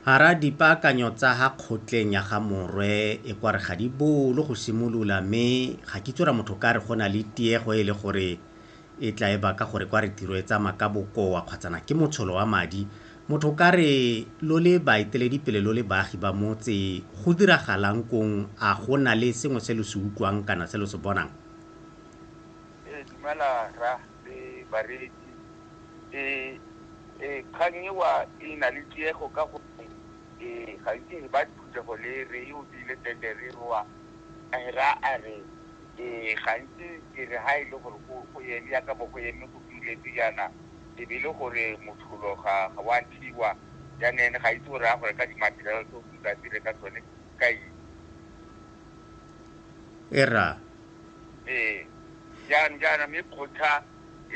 Hara dipaakanyo tsa ha kgotleng ya ga Morwe e kware ga di bolo go simolola mme ga ke tsora motho ka re go na le tiego e le gore e tla e baka gore kware tiro e tsama ka bokoa kgwatsana ke motsholo wa madi motho ka re lo le baeteledi pele lo le baagi ba motse go diragalang kong a go na le sengwe se lo se utlwang kana se lo se bonang ee dumela ra le bareetsi. Kgang eo e na le tiego ka gonne gantsi ba phuthego le re e opile tete re re wa ra a re gantsi ke re ha e le gore go eme yaka bo go eme go duletswe jaana e be e le gore motlholo ga wa thiwa jaana ene ga itse gore a gore ka di-material tse o tla dire ka tsone ka eng. E ra. Ee, jaanong jaana mme kgotla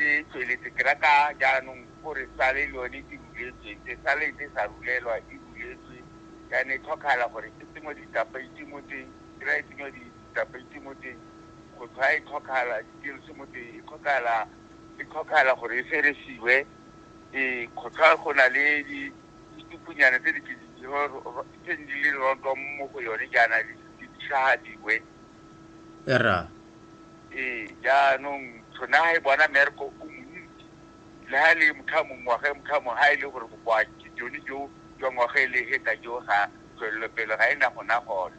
e tsweletse ke rata jaanong gore sale le yone e ruletswe se sale ntse sa rulelwa e ruletswe jaana e tlhokagala gore e tsenngwe ditapeiti mo teng kry e tsenngwe ditapeiti mo teng kgotla e tlhokagala dikilse mo teng e tlhokagala e tlhokagala gore e feresiwe ee kgotla go na le ditupunyana tse di tse di le rontong mo go yone jaana di tlhagadiwe Erra. Ee, jaanong tshone ga e bona merko o montsi le ga e le motho a mongwe ngwaga e motho a mongwe ga e le gore bokoa jone jo jwa ngwaga e le heta jo ga tswelelopele ga e na gona gone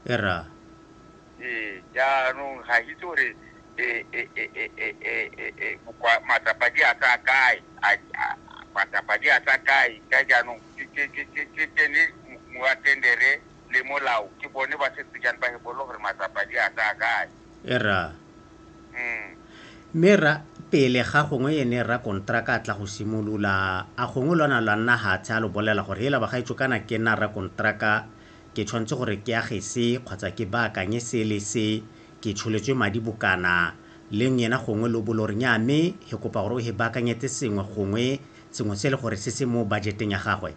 era ee jaanong ga itse gore matsapa di a tsa kae matsapa di a tsa kae ka jaanong ke tsene moatendere le molao ke bone ba setse jang ba hepolo gore matsapa di a tsaya kae e ra mm. mme ra pele ga gongwe ene ra kontraka a tla go simolola a gongwe lona lwa nna hatshe a lo bolela gore hela bagaetso kana ke nna ra kontraka ke tshwanetse gore ke age se kgotsa ke baakanye se le se ke tsholetswe madi bokana le ngena gongwe lo bolo re nya mme he kopa gore o he baakanyetse sengwe gongwe sengwe se le gore se se mo budgeteng ya gagwe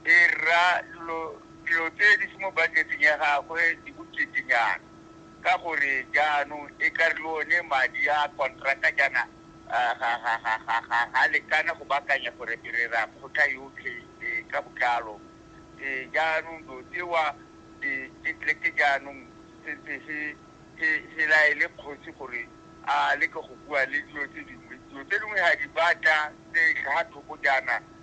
e rra dilo dilo tse di se mo budget-eng ya gagwe di boketenyana ka gore jaanong e ka re le one madi a contractor jaana ga lekana go baakanya gore re ra kgotha yotlhe ka botlalo jaanong dilo tsewa ke tleke jaanong sentse se se laele kgosi gore a leke go bua le dilo tse dingwe dilo tse dingwe ga di batla tse tlhaga thoko jaana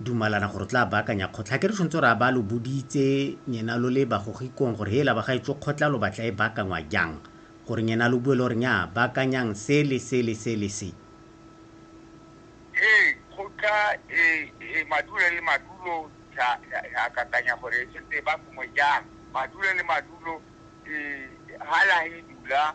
dumalana gore o tla baakanya kgotla. Ga ke re tshwanetse gore a ba lo boditse nyena lo le bagogikong gore hela ba gaetsho kgotla lo batla e baakangwa jang, gore nyena lo bue le gore nyaa baakanyang se le se le se le se. Ee, kgotla e e madulo le madulo ya ya akakanya gore e tshwanetse e baakangwe jang. Madulo le madulo e ha la e dula